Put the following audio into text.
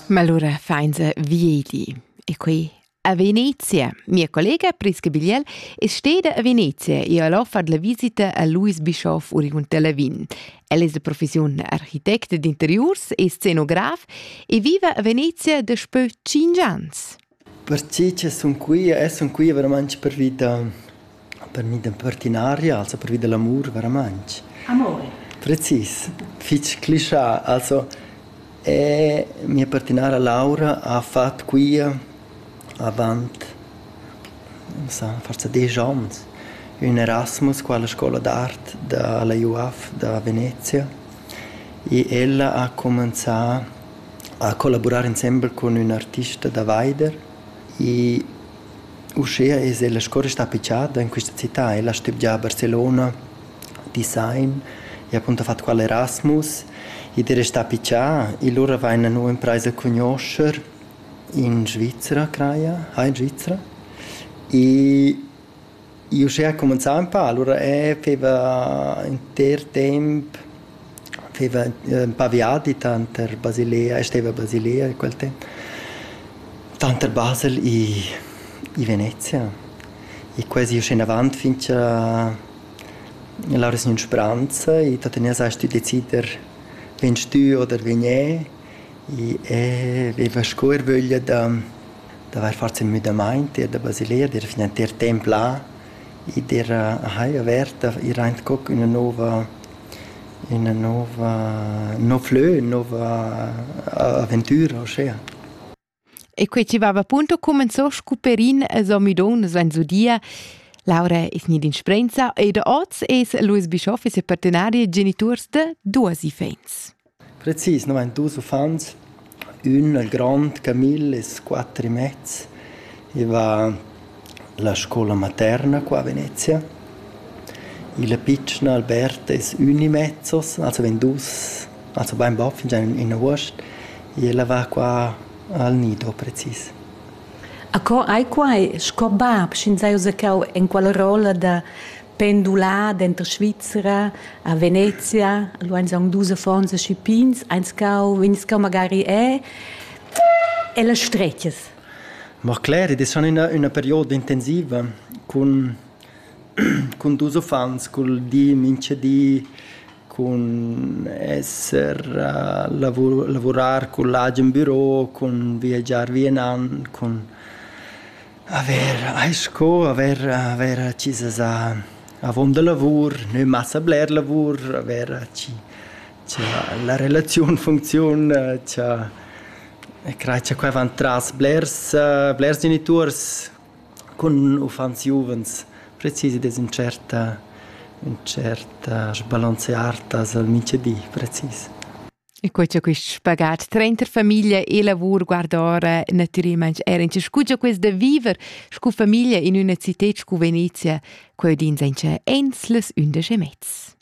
Malura fainza viedi e qui a Venezia. Mia collega Priska Bigliel è steda a Venezia e ha offert la visita a Louis Bischoff Urion Lavin. El è la professione architetto d'interiurs e scenograf e viva a Venezia daspö 5 ans. Pertgei che sun qui e sun qui veramein pervi da pervi da partinaria, also pervi da l'amur veramein. Amore. Precis, fich clischà. Also e mia partinara Laura ha fat quia avant non so, forsa desch ons ün Erasmus qua alla scoula d'art da la UAF da Venezia e ella ha cumanzà ha collavurar insembel cun ün artista da vaider e uschea es ella sco restà pichada in quista cità. Ella ha stübgià a Barcelona design e appunto ha fat qua l'Erasmus ed è restà pichà e lura vaina nu imprais a cugnuoscher in Svizra craja, ha in Svizra e Io uschè ha cumenzà ün pa, alura eh feva inter temp feva ün pa viadi tanter Basilea e steva a Basilea quel temp, tanter Basel i i Venezia e quasi uschè inavant fin cha l'aura es gnü spranza e tuttenina s'hast tü decider vegn stü oder vegn e e veva sco ervöglia da d'avair fat ün müdamaint ir da Basilea, d'eira fin entir temp là ed era hai avert ir aint co ch'üna nouva üna nouva ün nouv lö, ün nouva aventüra uschea. E quai chi vaiva appunto cumenzò scu Perin e s'ho müdò nus vains udia. Laura es gnida in sprenza ed hoz es Louis Bischoff e ses partenari e genituors da duos iffaints. Precis nu vain dus uffants, ün il grond Camille es quatter e mez, i va la scoula materna qua a Venezia, il pitschen Albert es ün e mezzos, also vegn dus, also bain bap fingià in avuost, ella va qua al nido precis. A co ai quai sco bap, sch'ins haja già enqual rolla da pendulà denter Svizra a Venezia, lu ein song dus affons e schipins, eins cau, ins cau magari è e las stretches. Ma cler, ed è schon una, una perioda intensiva con, con dus uffants, col di minchedi, con esser, uh, lavur, lavurar con l'agen büro, con viaggiar via in an, con Aver eis sco aver aver chi sesa avon da lavur, nö massa bler lavur, aver chi cha la relaziun funcziun, cha e crai cha quai van tras blers blers genituors cun uffants giuvens precisi dess ün tschert ün tschert sbalanzear tas al minchadi precis. E quei c'è quist spagat trenta famiglia e lavur guardora natüralment era in scugia quest da viver scu famiglia in üna cited scu Venezia, quei din sen che ens les undisch e mezz.